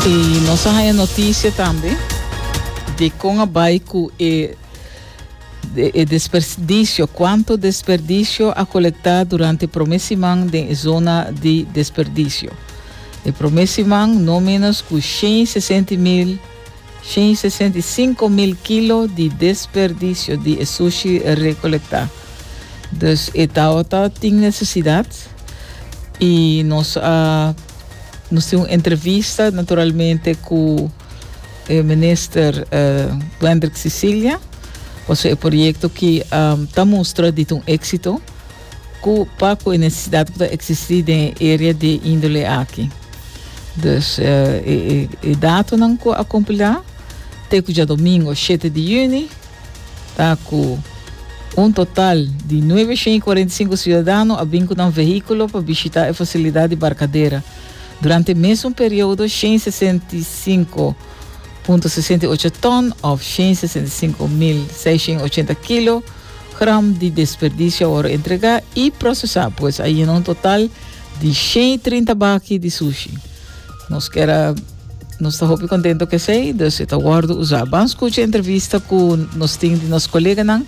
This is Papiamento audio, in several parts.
Y nos a haña noticia tambe de con a bai cu e, de, e desperdicio, cuanto desperdicio a colecta durante prome siman den e zona di desperdicio. E prome siman no menos cu shen y sesenti mil Shen i sesenta i sinku mil kilo di desperdisio di e sushi rekolektá. Dus e taota tin nesesidat i nos a nos tin un entrevista naturalmente ku e minister Wendrick Cecilia paso e proyekto ki ta mustra di ta un éksito. Cu paco e necesidad cu ta existi den e area de índole aki. Dus e, e, e datonan cu a compilá te cu djadomingo shete di juni ta cu un total di nuebe shen i cuarenta i sinku ciudadano a bin cu nan vehiculo pa bishita e facilidad di Barcadera durante e mesun periodo shen i sesenta i sinku punto sesenta i ocho ton of shen i sesenta i sinku mil seishen i ochenta kilo. gram di desperdicio awor entrega y procesa pues a yena un total di shen y trinta baki di sushi. Nos kera nos ta hopi contento cu esey, dus e ta wordo usa. Ban scucha entrevista cu nos tin di nos coleganan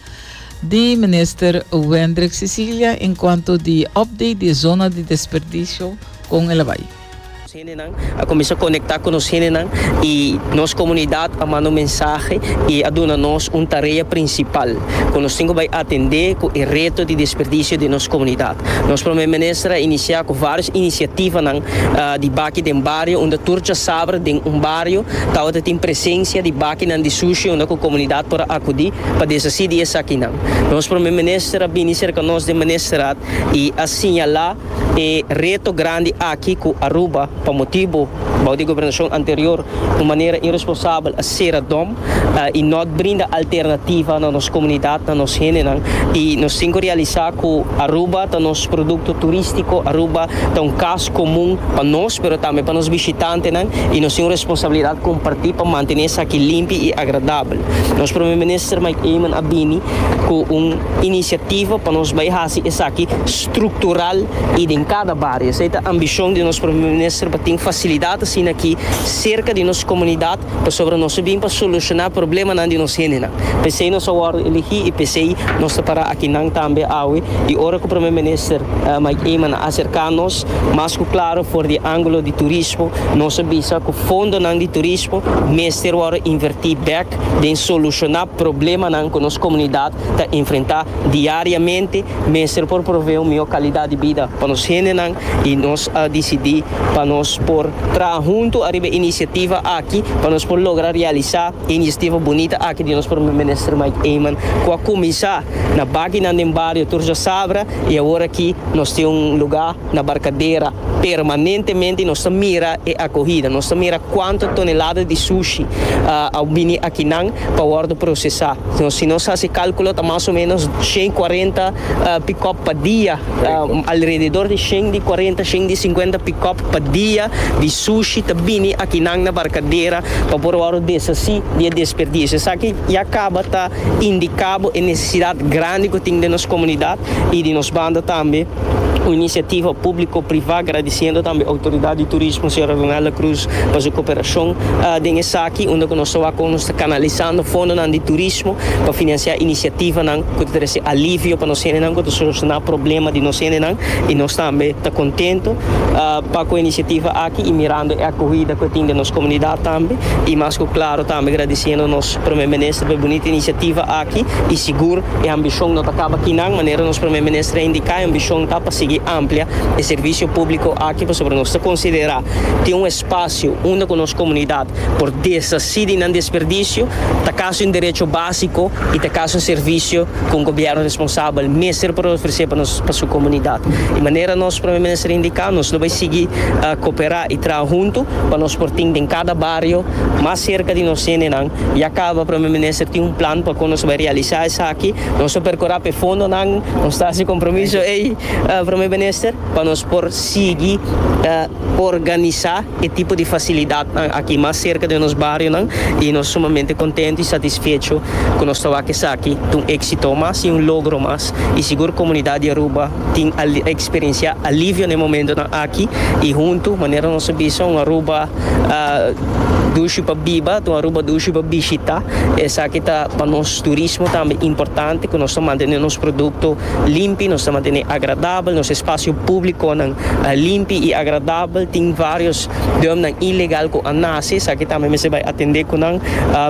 di Minister Wendrick Cecilia encuanto di update di e zona di desperdicio con e la bay. Nos hendenan a kuminsá konektá ku nos hendenan i nos komunidat a manda un mensahe i a duna nos un tarea prinsipal ku nos tin ku bai atendé ku e reto di desperdisio den nos komunidat. Nos Promé Minister a inisiá ku vários inisiativanan di baki den bario unda tur djasabra den un bario tabata tin presensia di bakinan di sushi unda ku komunidat por a akudí pa deshasí di esakinan. Nos Promé Minister a bini serka nos den Ministerat i a siñalá. E reto grandi aki cu Aruba, pa motibo bao di e gobernacion anterior, un manera irresponsabel a cera dom y no a brinda alternativa na nos comunidad, na nos hendenan. Y nos tin cu realisa cu Aruba ta nos producto turistico, Aruba ta un cas comun pa nos, pero tambe pa nos bishitantenan y nos tin un responsabilidad comparti pa mantene esaki limpi y agradabel. Nos Prome Minister Mike Eman a bini cu un iniciativa pa nos bay haci esaki. structural y den cada bario. Esey ta ambicion di nos Primer Minister pa tin facilidad asina aki cerca di nos comunidad pasobra nos a bin pa soluciona problemanan di nos hendenan. Pesey nos a wordo elegi y pesey nos ta para akinan tambe awe y ora cu Primer Minister Mike Eman a acerca nos mas cu claro for di angulo di turismo nos a bisa cu fondonan di turismo mester wordo inverti bek den soluciona problemanan cu nos comunidad ta enfrenta Diariamente mester por provee un mihó kalidat di bida pa nos hendenan i nos a disidí pa nos por traha huntu ariba e inisiativa aki pa nos por logra realisá e inisiativa bunita aki di nos Prome Minister Mike Eman ku a kuminsá na bakinan den bario Tur Jasabra i awor aki nos tin un lugá na barkadera permanentemente y nos ta mira e acogida, nos ta mira cuanto tonelada di sushi a bini akinan pa wordo procesa. Si nos haci calculo ta mas o menos shen y cuarenta pick-up pa dia, alrededor di shen di cuarenta, shen di cincuenta pick-up pa dia di sushi ta bini akinan na barkadera pa por wordo deshaci di e desperdicio. Esaki ya caba ta. Indica bo e necesidad grandi cu tin den nos comunidad y di nos banda tambe un iniciativa publico priva agradiciendo tambe autoridad di turismo señora Ronelda Cruz pa su cooperacion den esaki unda cu nos ta wak con nos ta canalizando fondonan di turismo pa financia iniciativanan cu ta trece alivio pa nos gentenan cu ta soluciona problema di nos gentenan y nos tambe ta contento pa cu e iniciativa aki y mirando e acuhida cu tin den nos comunidad tambe y mas cu claro tambe agradiciendo nos Prome Minister p'e bunita inisiativa aki i sigur e ambishon no ta kaba aki nan. Manera nos Prome Minister a indiká, e ambishon ta pa sigui amplia e servisio públiko aki pasobra nos ta konsiderá tin un espasio unda ku nos komunidat por deshasí di nan desperdisio ta kas di un derecho básiko i ta kas di un servisio ku un gobièrnu responsabel mester por ofresé pa nos pa su komunidat. I manera nos Prome Minister a indiká, nos lo bai sigui koperá i traha huntu pa nos por tin den kada bario, mas serka di nos hendenan i a kaba, Prome Minister tin un plan pa kon nos bai realisá esaki. Nos a perkorá p'e fondonan, nos ta hasi kompromiso ei, Prome Minister, pa nos por sigui organisá e tipo di fasilidatnan aki mas serka den nos barionan i nos sumamente kontentu i satisfecho ku nos ta wak esaki ta un éksito mas i un logro mas i sigur komunidat di Aruba Tin a experiencia alivio na e momentonan aki y hunto, manera nos a bisa, un Aruba dushi pa biba ta un Aruba dushi pa bishita. Esaki ta pa nos turismo tambe importante cu nos ta mantene nos producto limpi, nos ta mantene agradabel, nos espacio publiconan limpi y agradabel. Tin varios dormnan ilegal cu a nace, esaki tambe mester bay atende cu nan,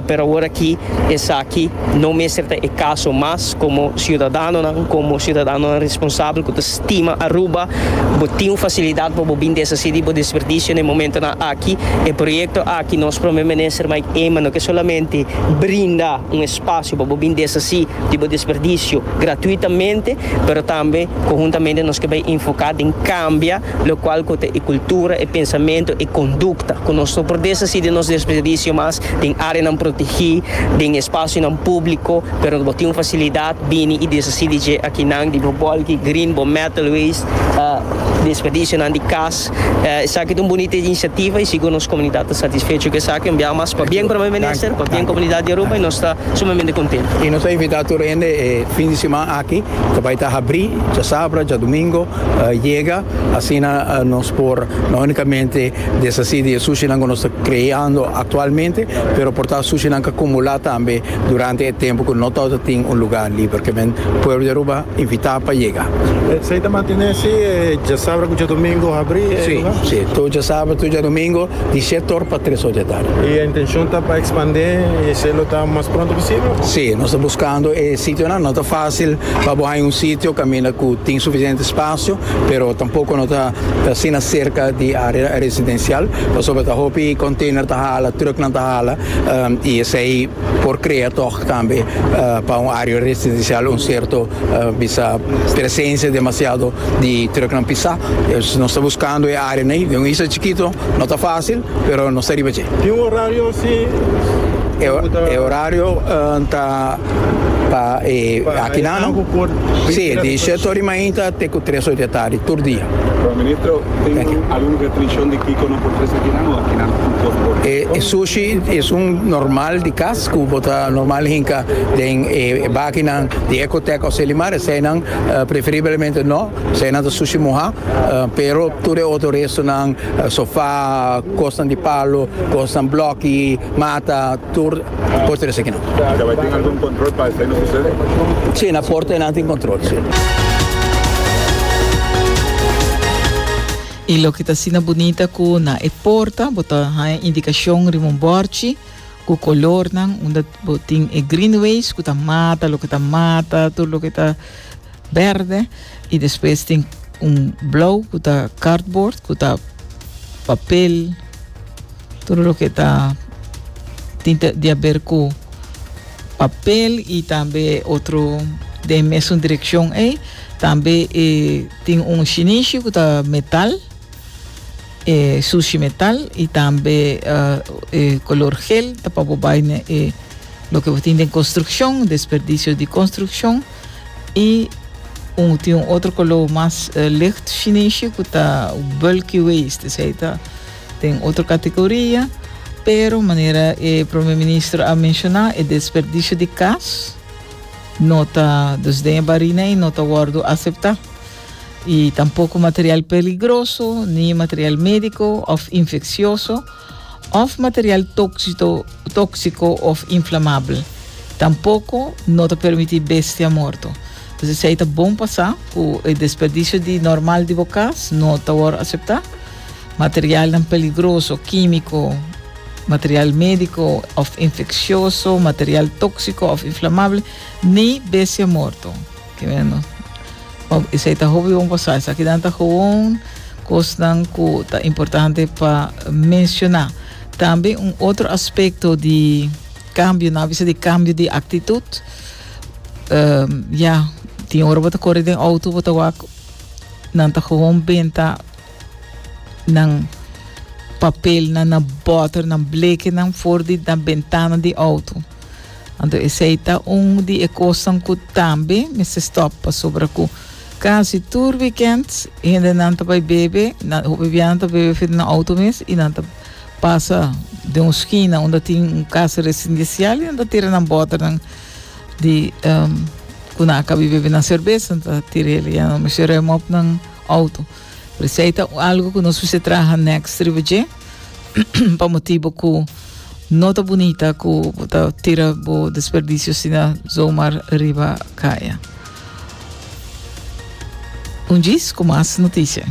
pero awor aki esaki no mester ta e caso mas. Komo siudadanonan, komo siudadanonan responsabel ku ta stima Aruba, bo tin un fasilidat pa bo bin deshasí di bo desperdisio n'e momentunan aki. E proyekto aki nos Prome Minister Mike Eman no ke solamente brinda un espasio pa bo bin deshasí di bo desperdisio gratuitamente, pero tambe konhuntamente nos ke bai enfoká den kambia lokual ku ta e kultura, e pensamentu, e kondukta, ku nos no por deshasí di nos desperdisio mas den áreanan protegí, den espasionan públiko. Pero bo tin un facilidad bini y deshaci di dje akinan di bo bolki green, bo metal waste, desperdicionan di cas. Esaki ta un bonita iniciativa y sigur nos comunidad ta satisfecho cu esaki un biaha mas pa bien Prome Minister, pa bien comunidad di Aruba y nos ta sumamente contento. Y nos ta invita tur hende e fin di siman aki ta bay ta habri djasabra, djadomingo yega asina nos por no unicamente deshaci di e sushinan cu nos ta creando actualmente pero por ta sushinan ca cumula tambe. durante e tempu ku no tabata tin un lugá liber ku men pueblo di Aruba invitá pa yega. Esei ta mantené si e djasabre ku djadumingu habrí e lugá? Si, si. Tur djasabre, tur djadumingu di siete or pa tres or di atardi. I e intenshon ta pa ekspandé e selo ta mas pronto posibel? Si, nos ta buskando e sitionan. No ta fásil pa bo haña un sitio kaminda ku tin sufisiente spasio, pero tampoko no ta ta asina serka di área residensial, pasobra ta hopi konteiner ta hala, trùknan ta hala. Um, y esei por crea toch tambe uh, pa un área residencial un cierto uh, bisa presencia demasiado di trucknan pisa. Pues nos está buscando e área nei, de un isla chiquito, no está fácil, pero nos está riba che. Tem horário assim? E, e horário uh, tá pa e akinan no si di shet ori mainta te ku tres ori de tardi tur dia. Pero ministro tin algun restrikshon di kiko no por tres akinan o akinan tin por por? E e sushi es un normal di kas ku bo ta normal hinka den e bakinan di Ecotec o Selimar eseinan preferiblemente no p'esei einan ta sushi muha pero tur e otro restonan sofa kosnan di palo kosnan bloki mata tur por trese kinan. Pero bai tin algun control pa esai no sucede? Si, na porta nan tin control, si. I loke ta asina bunita ku na e porta bo ta haña indikashon riba un bòrchi ku kolornan unda bo tin e greenways ku ta mata loke ta mata tur loke ta Berde y despues tin un blauw cu ta cardboard cu ta papel todo loke ta tin ta di haber cu papel y tambe otro den mesun direccion ey tambe e tin un shinishi cu ta metal e sushi metal y tambe e color gel ta pa bo bay na e loke bo tin den construccion desperdicio di construccion. y un tin un otro color mas licht shinishi cu ta bulky waist, esey ta den otro categoria, pero manera e Prome Ministro a menciona e desperdicio di cas no ta dus den e barina y no ta wordo acepta y tampoco material peligroso ni material medico of infeccioso. òf material tóksiko òf inflamabel. Tampoko no ta permití bestia morto. Pues esei ta bon pa sa ku e desperdisio di normal di bo kas no ta wòrdu aseptá. Materialnan peligroso, kímiko, material médiko òf infeksioso, material tóksiko òf inflamabel, ni bestia morto. Ki meno. Òf esei ta hopi bon pa sa. Esakinan ta gewoon kosnan ku ta importante pa menshoná. Tambe un otro aspekto di kambio, nan a bisa di kambio di aktitut. Ya, tin ora bo ta kore den outo, bo ta wak nan ta gewoon benta nan papelnan, nan bòternan, blekenan for di nan bentana di outo. Anto esei ta un di e kosnan ku tambe mester stòp pasobra ku kasi tur wikènt hendenan ta bai bebe, nan hopi bianan ta bebe frente nan outo mes i nan ta pasa den un skina unda tin un kas residinsial i nan ta tira nan bòternan di ku nan a kabi bebe nan serbes, nan ta tira el i a nan mishi rèm op nan outo. Por esei ta un algu ku nos mester traha nèks riba dje pa motibu ku no ta bunita ku bo ta tira bo desperdisio asina zomar riba kaya. Un djis ku mas noticia.